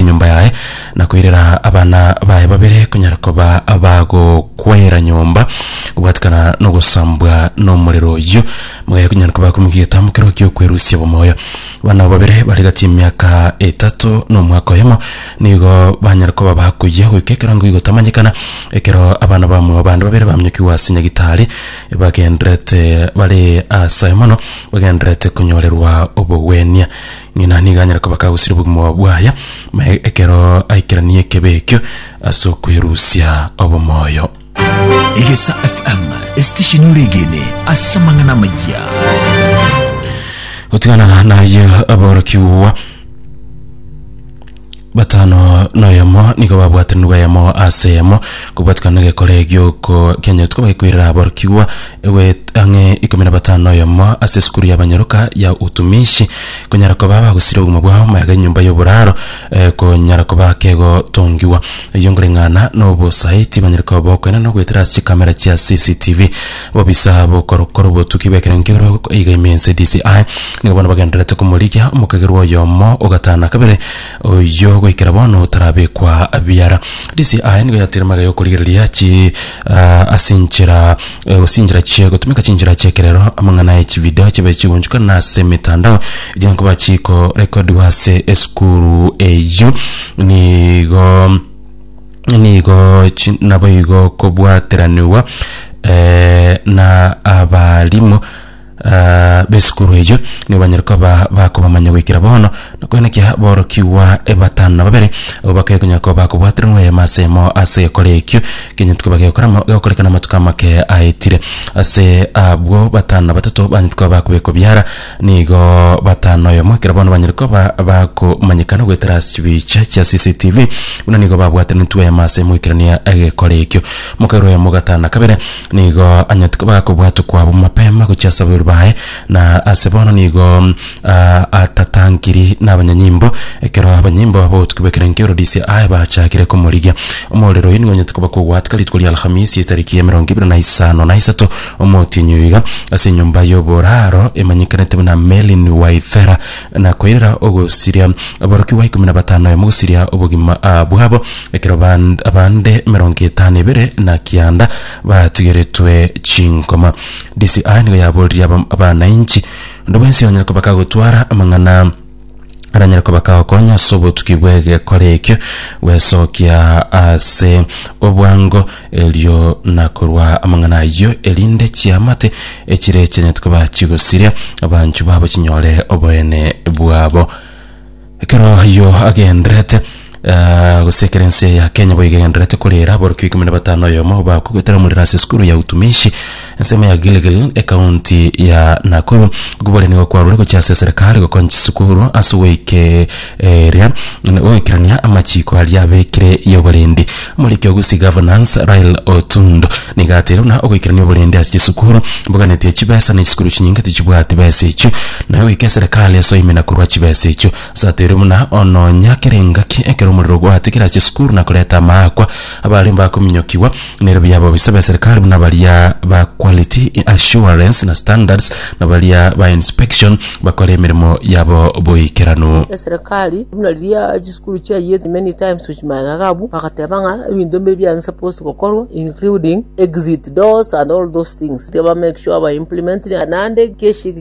enyomba yaye, na koirera abana baye babere konyara koba abagokwera nyomba kobwatikana nogosambwa nomorero oyio, mogaye konyara koba akomokia egetambo keroo gi'okwerusia bomoyo. Abana abo babere bare gati y'emiaka etato na omwaka oyomo nigo banyare koba bakoyia goika ekero ngoigotamanyekana, ekero abana bamwabo bande babere baminyokigwa ase Nyagitari, bagendererete bare aase aye mono, bagendererete konyorerwa obogwenia. Ng'ina nigo anyare koba kagusire obogima bwaye, na ekero aikeranie ekebe ekio ase okwerusia obomoyo. Egesa FM, esitesheni oregene ase amang'ana amayia. Gotigana naye aborokigwa. Batano noyomo nigo babwatanire bwayamo ase eyemo, kobwatikana negekore gioko kianyorete koba gekoirera aborokigwa egoet- ang'e ikomi na batano noyomo ase esukuru y'abanyaroka ya utumishi, konyara koba bagosira obogima bwao maega enyomba y'oboraro, eh, konyara koba kegotongigwa. Eyio nkoreng'ana nobosae, tibanyare koba bokoina nogoetera ase chikamera chia CCTV. Obobisa b'okorokoro obotuki bw'ekero nkebere gokoiga ime ense DCI nigo bono bagendererete komorigia omokagerwa oyomo ogatana kabere oyio goikera bono otarabekwa biara. DCI nigo yatire magega y'okorigereria chi ah, ase enchera eh, gose chinchera chie gotumeka chinchera chi'ekerero, amang'ana e chivideo chibe chigonchukana na ase emetandao eria nkoba chikorekodigwa ase esukuru eyio nigo nigo chi- naboigo kobwateranigwa eh, na abarimu ah, b'esukuru eyio nigo banyare koba bakobamanya goikera bono nakorende ki aborokigwa batano na babere abwo bakaya konyara koba bakobwateranigwa eyemo ase eyemo ase egekora ekio ekenyiti koba gegokora mo- gegokorekana amatuko amake aetire ase abwo batano na batato banyete koba bakobekwa ebiara Nigo batano oyomo ekero bono banyare koba bakomanyekana goetera ase chibiicha chia CCTV buna nigo babwatire nitwe eyemo ase emoikerania egekora ekio. Mokairo oyomo ogatana kabere nigo anyarete koba akobwatwa kwabo mapema gochia ase aborweri baye na ase bono nigo mm, ah, atatangiri nabanyanyimbo ekero abanyanyimbo abotuki bw'ekerengo Eurodisia I bachakire komorigia. Omorero oyo nigo onyarete koba kogwatika rituko ria Alhamisi etariki ya emerongo ebere na isano na isato Omotienyi oyo iga ase enyomba y'oboraro emanyekanete buna Merlin Waithera na koirera ogosiria aborokigwa ikomi na batano aye mogosiria obogima ah, bwabo ekero band- abande emerongo etano ebere na kianda batigeretwe chinkoma. DCI nigo yaboririe aba- abanainchi onde bwensi onyare koba kagotwara amang'ana aranyare koba kagokonya ase obotuki bw'egekora ekio gwesokia ase obwango erio na korwa amang'ana ayio erinde chiamate echire chianyete koba chigosiria abanchu babo chinyore oboene bwabo ekero ayio agenderete gose ekero ense ya Kenya boigo egendererete korera aborokigwa ikomi na batano oyomo bakogoetera omorero ase esukuru ya utumishi ensemo ya Gilgil ekaunti ya Nakuru. Okobwaria nigo kwarure gochia ase eserekari gokonya chisukuru ase ogoike eria goikerania amachiko aria abekire yoborendi. Omoriki o Gusii Governance Rael Otundo nigo ateire buna ogoikerania oborendi ase chisukuru mboganetie chibesa na chisukuru chinyinge tichibwati besa echio naye goika eserekari ase oimina korwa chibesa echio. Satiri buna ononya kere engaki ekero omorero ogwate kerache sukuru na koreta amaakwa, abaria mbakominyokigwa nere buya abobisa b'eserikari buna baria ba Quality Assurance na Standards na baria ba Inspection bakore emeremo yabo boikeranu. Eserekari buna riria chisukuru chiayete many times with magega abwo bagateba ng'a ebinto mbire biane supposed gokorwa including exit doors and all those things, tiba make sure ba implement naende.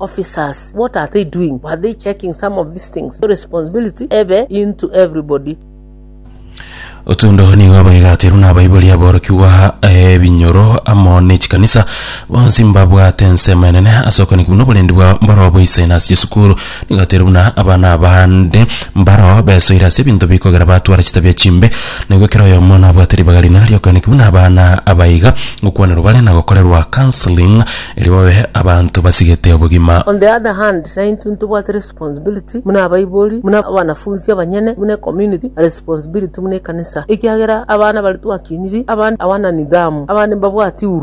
Officers, what are they doing? Were they checking some of these things? Your responsibility ebe into everybody. Otundo nigo abaigaterwe na abaibori aborokigwa ebinyoro amo ne chikanisa bonsi mbabwate ensemo enene ase okonikwa buna oborendi bwa mboroo boisaine ase chisukuru nigaterwe buna abana abande mbaroo besoire ase ebinto bikogera batwara chitabia chimbe naigwe kera oyomo nabwate ribaga rinene riokonikwa buna abana abaiga gokwanerwa bare na gokorerwa counseling Erio babe abanto basigete obogima. On the other hand, naintwe ntobwate responsibility buna abaibori, buna abanafunsi abanyene, buna ecommunity, na responsibility buna ekanisa, ekiagera abana baria twakiniri, abande abana nidhamu, abande mbabwati huruma.